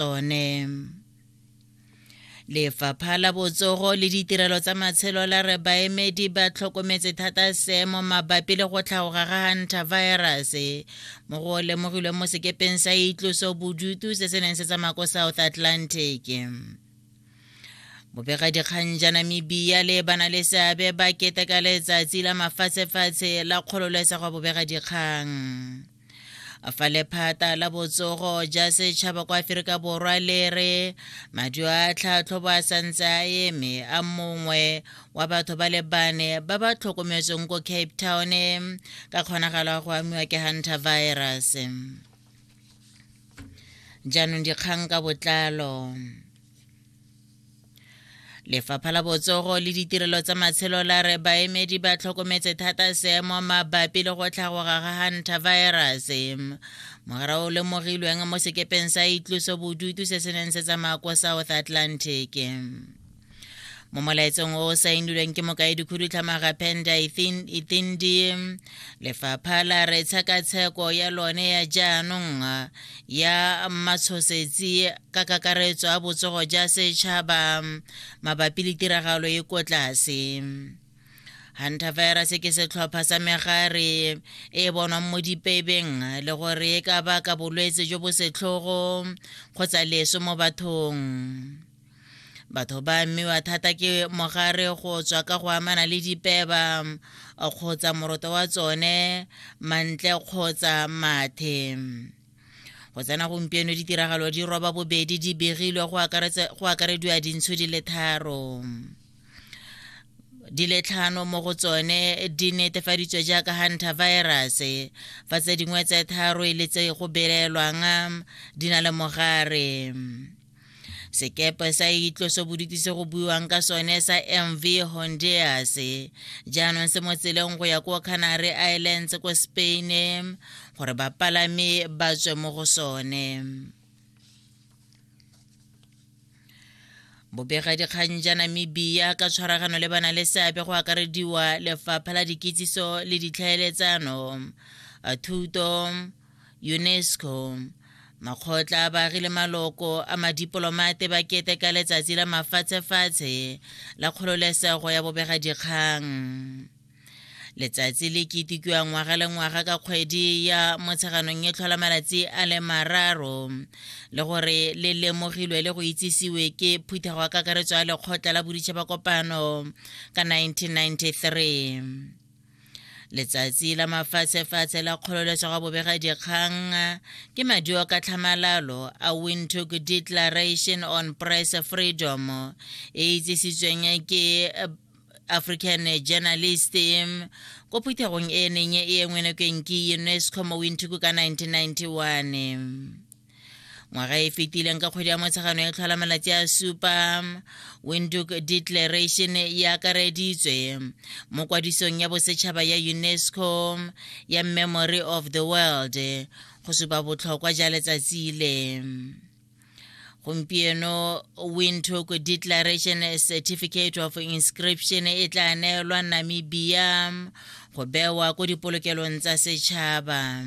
tsone lefapha la botsogo le ditirelo tsa matshelo la re baemedi ba tlhokometse thata seemo mabapi le go tlhaoga ga hunter virus mo go lemogilweng mo sekepeng sa itloso bodutu se se neng se tsamaya ko south atlantic bobegadikgang ja namibia le bana le seabe ba keteka letsatsi la mafatshefatshe la kgololesego bobegadikgang fa lephata la botsogo ja setšhaba kwa aferika borwa le re madio a tlhatlhobo a santse a eme a mongwe wa batho ba le bane ba ba tlhokometsweng ko cape town ka kgonagalo ya go amiwa ke hunter virus jaanong dikgang ka botlalo lefapha la botsogo le ditirelo tsa matshelo la re baemedi ba tlhokometse thata seemo mabapi le go tlhagoga ga hantavirus mogara o lemogilweng mo sekepeng sa itloso bodutu se se neng se tsamaya ko south atlantic mo molaetsong o o saenilweng ke mokaedikhudutlhamaga penda ithindi lefapha la re tshekatsheko ya lone ya jaanong ya matshosetsi ka kakaretso a botsogo ja setšhaba mabapi le tiragalo e ko tlase hunter virus ke setlhopha sa megare e bonwang mo dipebeng le gore e ka baka bolwetse jo bo setlhogo kgotsa leso mo bathong batho ba amiwa thata ke mogare go tswa ka go amana le dipeba kgotsa moroto wa tsone mantle kgotsa mathe go tsena gompieno ditiragalo di roba bobedi di begilwe go akarediwa dintsho di le tharo di le tlhano mo go tsone di netefaditswe jaaka hunter virus fa tse dingwe tse tharo e le tse go belelwang di na le mogare sekepe sa itlosobodutu se go buiwang ka sone sa mv honduras jaanong se mo tseleng go ya ko canary islands ko spain gore bapalami ba tswe mo go sone bobegadikgang ja namibia ka tshwaragano le bana le seabe go akarediwa lefapha la dikitsiso le ditlhaeletsano thuto UNESCO. Makgotla a baagi le maloko a madipolomate ba keteka letsatsi la mafatshefatshe la kgololesego ya bobegadikgang. Letsatsi le ketikiwa ngwaga le ngwaga ka kgwedi ya motsheganong e tlhola malatsi a le mararo le gore le lemogilwe le go itsisiwe ke phuthego ya kakaretso ya lekgotla la boditšhaba kopano ka 1993. letsatsi la mafatshefatshe la kgololesego bobega dikgang ke maduo ka tlhamalalo a windhoek declaration on press freedom e itsisitsweng ke african journalist ko phuthegong e neng e engwe nakeng ke unesco mo windhoek ka 1991 ngwaga e fetileng ka kgwedi ya motshegano e tlhola malatsi a supa windhoek declaration e akareditswe mo kwadisong ya bosetšhaba ya unesco ya memory of the world go supa botlhokwa ja letsatsi le gompieno windhoek declaration certificate of inscription e tla neelwa namibia go bewa ko dipolokelong tsa setšhaba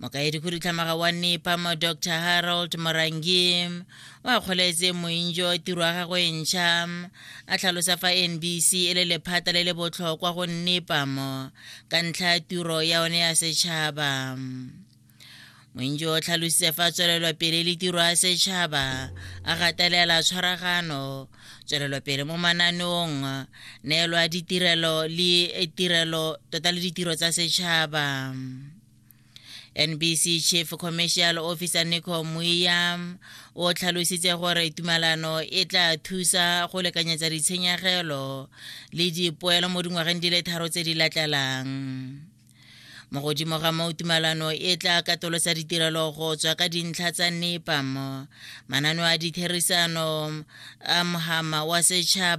mokaedi khudutlhamaga wa nepam dr harold morangi o akgoletse moinjo tiro ya gagwe ntšha a tlhalosa fa nbc e le lephata le le botlhokwa go nepam ka ntlha ya tiro ya one ya setšhaba moinjo o tlhalositse fa tswelelwa pele le tiro ya setšhaba a gatelela tshwaragano tswelelopele mo mananeong neelwa ditirelo le tirelo tota le ditiro tsa setšhaba nbc chief commercial officer nico muya o tlhalositse gore tumalano e tla thusa go lekanyetsa ditshenyegelo le dipoelo mo dingwageng di le tharo tse di latlalang mo godimo ga moo tumalano e tla katolosa ditirelo go tswa ka dintlha tsa nepam mananeo a ditherisano a mohama wa setšhaba